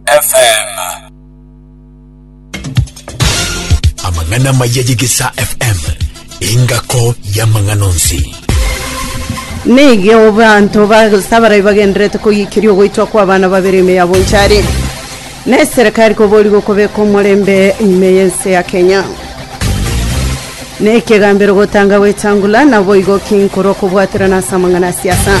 FM. Amang'ana amaya y'Egesaa FM, engako y'amang'ana onsi. Nige obanto basabarai bagenderete koyikiria ogoitwa kwa abana babere ime yabo nchari na eserekari kobori gokobeka omorembe ime y'ense ya Kenya. Na ekegambero gotanga gwetangula naboigo kinkorwa kobwaterana ase amang'ana ya siasa.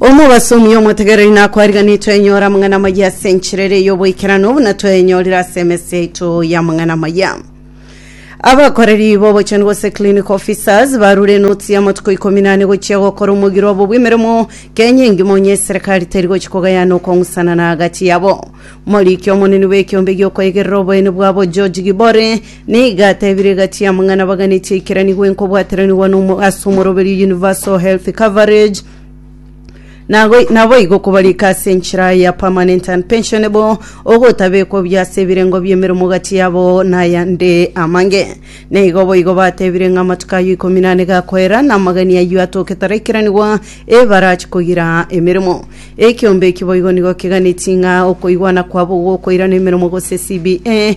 omobasomi omotegereri nakwariganetwe enyora amang'ana amaya ase enchera ere y'oboikeranu buna twenyorire ase emesi yaito y'amang'ana amaya abakoreri b'obochani gose clinic officers barure enoti y'amatuko ikomi nane gochia gokora omogiro obo bw'emeremo kenya engima onye eserikari teri gochia kogayana okong'usanana agati yabo moriki omonene bw'ekiombe giokoegerera oboene bwabo george gibore Nigo atebire egati y'amang'ana baganetie eikeranigwa enkobwateranigwa nomo ase omoroberio Universal Health Coverage nago naboigo kobarika ase enchera ya Permanent and Pensionable ogotabekwa buya ase ebirengo bi'emeremo gati yabo nayande amange. Nigo boigo batebire ng'a amatuko ayio ikomi nane gakoera na amagani ayio atoke taraikiranigwa ebarachi kogira emeremo. Ekiombe eki boigo nigo keganetie ng'a okoigwana kwabo gokoirana emeremo gose CBA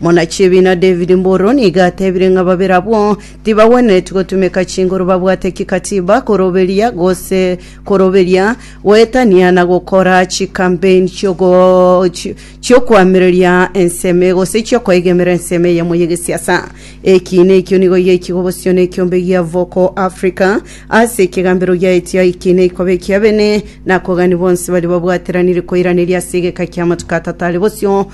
Mwanachibiina David Mburu nigo atebire ng'a babere abwo tibagwenereti gotumeka chinguru babwate kikatiba koroberia gose koroberia goetania na gokora chikampeini chi'ogo chi- chi'okoamereria enseme gose chi'okoegemera enseme eyemo y'egesiasa. Eki nekio nigo giaikigwe bosio nekiombe gia Voco Africa ase ekegambero giaetio eki neikoba ekia bene na akogania bonsi baria babwateranire koiraneria ase egeka ki'amatuko atato are bosio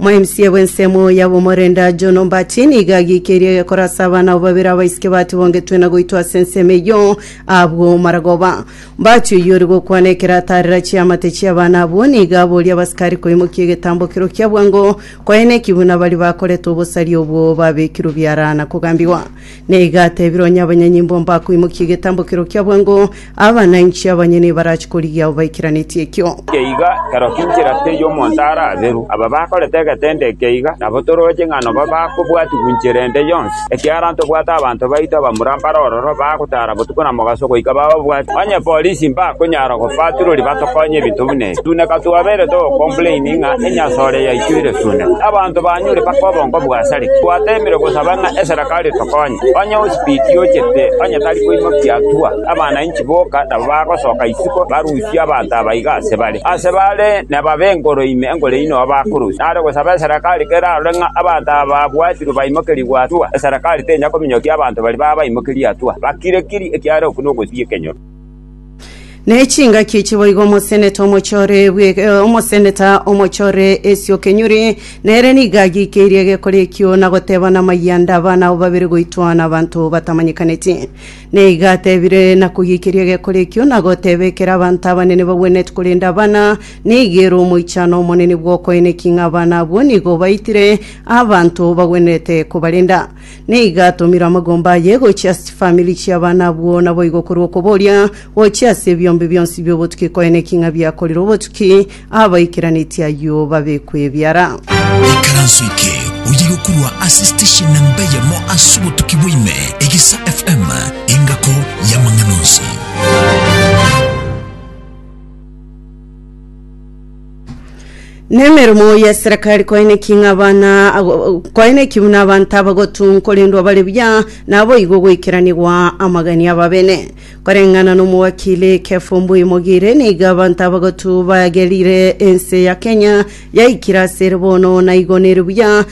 Omwaimsie bw'ensemo y'ab'omorenda John Ombati nigo agiikeire korasa abana abo babere abaisike batibogetwe na goitwa ase ensemo eyio abwo maragoba. Ombati oyio ore gokwana ekero ataarera chiamate chi'abana abwo nigo aboria abasikari koimokia egetambo ekero kia bwango kwaenekigwe na baria bakorete obosaria obwo babekirwe biara na kogambigwa. Na iga atebire onye abanyanyimbo mbakoimokia egetambokero kia bwango, abana inche abanye nebarachie korigia abo baikeranetie ekio. Geiga ekero kinchera teiyo omonto ara aberu. Aba bakorete egetende eke iga nabo toroche ng'a nobo bakobwatigwa inchera ende yonsi, ekiagera ntobwate abanto baito abamura mbare ororo bagotara botuko na mogaso goika bababwate. Onye polisi mbakonyara gofaturoria batokonye ebinto buna ebi. Tuneka twabeire togocomplaini ng'a enyasore yaichoire sune. Abanto banyure mpaka obongo bwasarigwe. Twateemire gosaba ng'a eserekari tokonye. Onye osibiti ochete onye tari koimokia atua, abana inchi boka nabo bagosoka isiko barusie abanto aba iga ase bare. Ase bare nababe enkoro ime enkoro eyio noyo bakorusia. Nare gosaba eserekari kerarore ng'a abanto aba babwatirwe baimokerigwe atua. Eserekari tenya kominyokia abanto baria babaimokerie atua. Bakire kiri ekiagera okwo nogosibia ekenyoro. nechingaki echi boigo omoseneta omochore bwe- eh, omoseneta omochore esio kenyuri nere nigo agikeirie egekori ekio na goteba namayanda abana abo babere goitwa na abanto batamanyekaneti neigo atebire na kogikeria egekori ekio na goteba ekero abanto abanene bagwenereti korenda abana nigo ere omoichano omonene bw'okoeneki ng'a abana abwo nigo baitire abanto bagwenerete kobarenda Nigo atomire amagomba aye gochia ase chifamiri chi'abana abwo, naboigo korwa okoboria gochia ase ebiombe bionsi bi'obotuki konya neking'a biakorire obotuki, abaikeranetie ayio babekwe ebiara. Ikaranso eke oyigo korwa ase station nemba eyemo ase obotuki bwa ime, Egesa FM, engako y'amang'ana onsi. Nemeremo y'eserekari koeneki ng'abana ago- koeneki buna abanto abagotun korendwa bare buya naboigo goikeranigwa amagani ababene koreng'ana n'omowakili Kefo Mbuyi Mogire nigo abanto abagotu bagerire ense ya Kenya yaikire asere bono naigo nere buya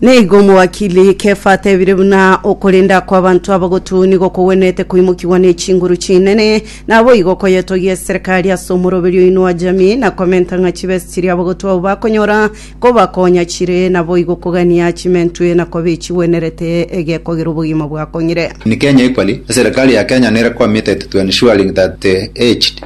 Na igo omowakili Kefa atebire buna okorenda kw'abanto abagotwe nigo kogwenerete koimokigwa n'echinguru chinene, naboigo koyetogia eserikari ase omoroberi oino wa jamii, na komenta ng'a chibesa chiria abagotwe abwo bakonyora kobakonya chire, naboigo kogania chimentwe na koba echigwenerete egekogera obogima bwakong'ire. In Kenya equally, eserekari ya Kenya nere kwamete to to ensuring that the aged,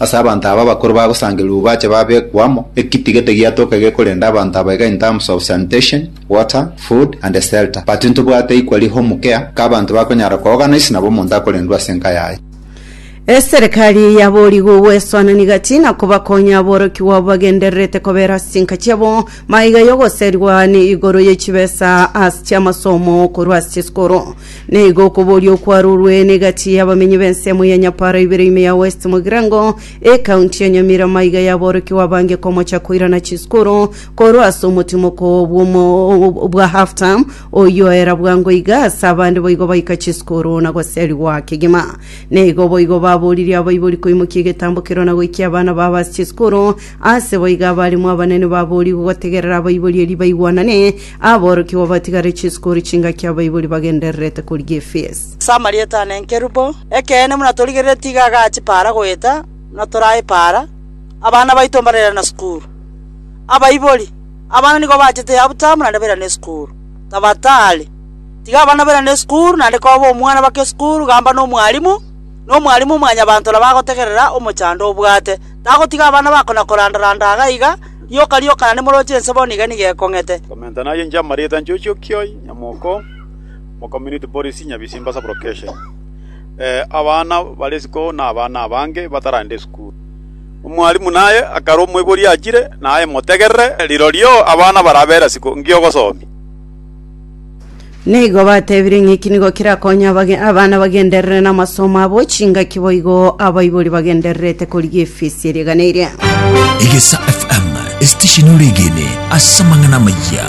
Ase abanto aba abakoro bagosangereria obobache babekwe amo, ekitigete giatoke gekorenda abanto aba iga in terms of sanitation, water, food and shelter. But ntobwate equally home care k'abanto bakonyara koogana ase nabo omonto akorendwe ase enka yaye. Eserekari yaboorigwe gwesoanania gati na kobakonya aborokigwa abo bagendererete kobera ase chinka chiabo maiga y'ogoserigwa ne igoro ye chibesa ase chi'amasomo korwa ase chisikoro. Nigo okoboria okwarorwe n'egati y'abamenyi b'ensemo ya Nyapara ibere ime ya West Mugirango, ekaunti ya Nyamira maiga yaborokigwa abange komocha koirana chiskuru korwa ase omotimoko bw'omo- bwa half term oyio era bwango iga ase abande boigo baika chiskuru na goserigwa kegima. Nigo boigo baboririe abaibori koimokia egetambo kerwa na goikia abana babo ase chiskuru, ase boigo abarimu abanene baborigwe gotegerera abaibori erio baigwanane Aborokigwa batigare chisukuru chingaki abaibori bagendererete korigia Efeso. Ase amarieta ane nkerubo, ekeene buna torigerere tiga agachipaara goeta buna toraepaara, abana baito mbarera na sukuru. Abaibori, abana nigo bachete yabutamwa naende bairana esukuru. Tabatari, tiga abana bairane esukuru naende koba omwana baka esukuru gamba nomwalimu, na omwalimu omwanyabanto nabo agotegerera omochando obwate, tagotiga abana bakona koranda-randa iga na iga, Rioka rioka na nimoroche ense bono iga nigo ekong'ete. Komenta naye inche amarieta nchochi okioi nyamoko mo community policy Nyabisimba sub location abana bare isiko na abana abange bataragenda esukuru. Omwalimu naye akarwa omoibori achire naye motegerere rirorio abana barabera isiko ngi'ogosomia. Nigo batebire ng'iki nigo kirakonya abage- abana bagenderere n'amasomo abo chingaki boigo abaibori bagendererete korigia efisi erigana eria Egesa FM, esitesheni oregene ase amang'ana amaya.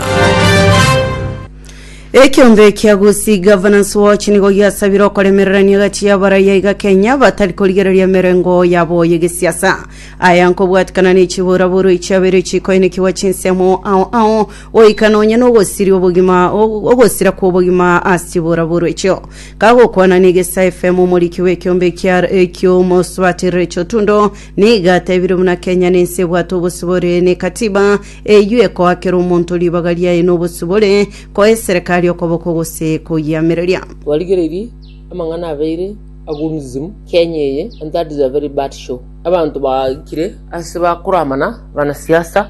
ekiombe ekia gusi governance watch nigo giasabire okoremererania gati y'abaraiya iga kenya batari korigereria emerengo yabo y'egesiasa aya nkobwatikana ne chiburaburu echiabeire chikoinekigwa chinsemo ao ao goika nonya nogosiria obogima o- ogosira kw'obogima ase chibooraboro echio. Kagokwana negesa efemo omoriki bw'ekeombe ekia eki'omosubaterero echotundo, nigo atebirie buna Kenya nense ebwate obosibore nekatiba, eyio ekoakera omonto ribaga riaye nobosibore, koa eserekari okoboko gose koyiamereria. Twarigereiri amang'ana abeire agurumsimu Kenya eye and that is a very bad show. Abanto baikire ase bakoramana banasiasa.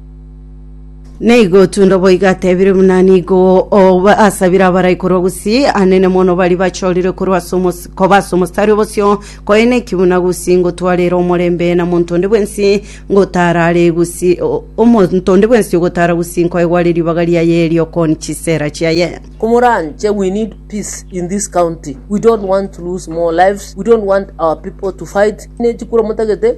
neigo tundo boiga atebire buna nigo oba- asabire abarai korwa gusii anene mono bari bachorire korwa ase omos- koba ase omostari obosio koene ekiguna gusii ngotwarere omorembe na monto onde bwensi ngotarare gusii o- omonto onde bwensi ogotara gusii nkoegware ribaga riaye riokoni chisera chiaye Kumuranche, we need peace in this county. We don't want to lose more lives. We don't want our people to fight. Nechikura motagete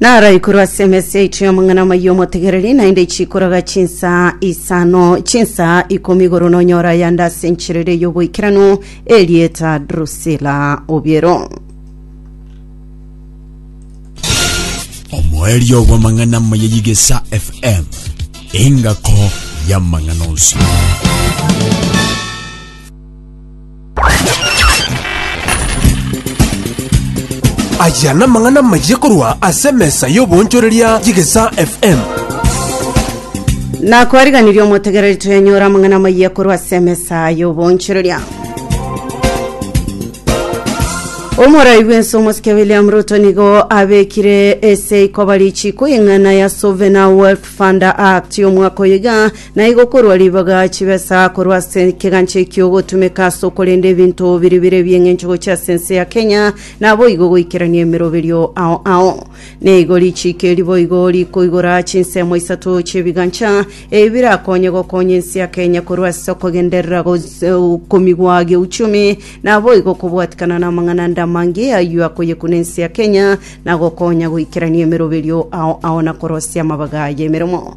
Naraikorwa ase emesa yaito y'amang'ana amaya y'omotegereri, naende chikoraga chinsa isano, chinsa ikomi igoro nonyore ayande ase enchera eria y'oboikeranu, erieta Drusila obiero. omoerio bw'amang'ana amaya y'igesa fm engako y'amang'ana onsi Aya namang'ana amayia korwa ase emesa y'oboonchoreria y'Egesaa FM. nakwariganirie omotegereri twenyora amang'ana amayia korwa ase emesa y'oboonchoreria omorai bw'ense omosike william ruto nigo abekire ase ikoba richiiko y'eng'ana ya sovereign wealth fund act y'omwaka oyoiga Na igo korwa ribaga chibesa korwa ase ekegancha ekio ogotumeka ase okorenda ebinto biria bire ebi'eng'encho gochia ase ense ya Kenya, naboigo goikerania emeroberio ao ao. Na igo richiiko eri boigo rikoigora chinsemo isato chi'ebigancha ebi birakonye gokonya ense ya Kenya korwa ase okogenderera gos- okomigwa geuchumi, naboigo kobwatikana namang'ana ande amange ayio akoyekuna ense ya Kenya, na gokonya goikerania emeroberio ao ao na korosia amabaga y'emeremo.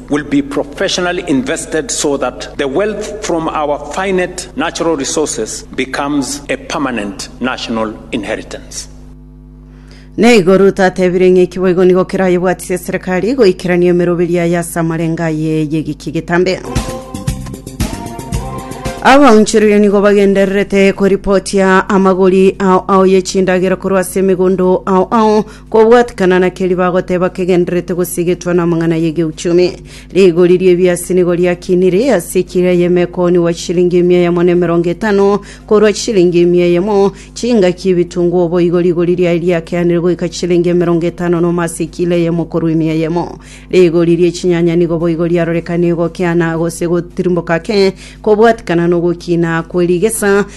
will be professionally invested so that the wealth from our finite natural resources becomes a permanent national inheritance. Naigo Ruto atebire ng'a eki boigo nigo kerayebwatisie eserekari goikerania emeroberi yaye ase amarengo aye y'egiki egetambe. Abaonchoreria nigo bagendererete koripotia amagori ao ao y'echindagera korwa ase emegondo ao ao Kobwatekana na keria bagoteba kegendererete gosigetwa namang'ana y'egeuchumi, rigori ri'ebiasi nigo riakinire ase ekira y'emekoni gwa chilingi emia eyemo na emerongo etano korwa chilingi emia eyemo. Chingaki ebitunguo boigo rigori riaye riakeanire goika chilingi emerongo etano nomo ase ekila eyemo korwa emia eyemo. Rigori ri'echinyanya nigo boigo riarorekanirie gokeana gose gotirimboka ake kobwatekana nogokiina kwe rigesa,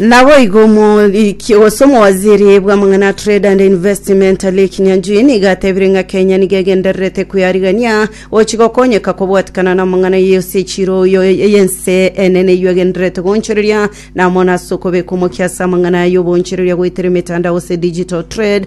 Naboigo omoriki gose omowaziri bw'amang'ana trade and investment Lake Nyanjui nigo atebire ng'a Kenya nigo egendererete kweyarigania gochi gokonyeka kobwatikana n'amang'ana yose echiro oyo y'ense enene eyio egendererete goonchoreria namo nase okobeka omokia ase amang'ana y'oboonchoreria goetera emetandao gose digital trade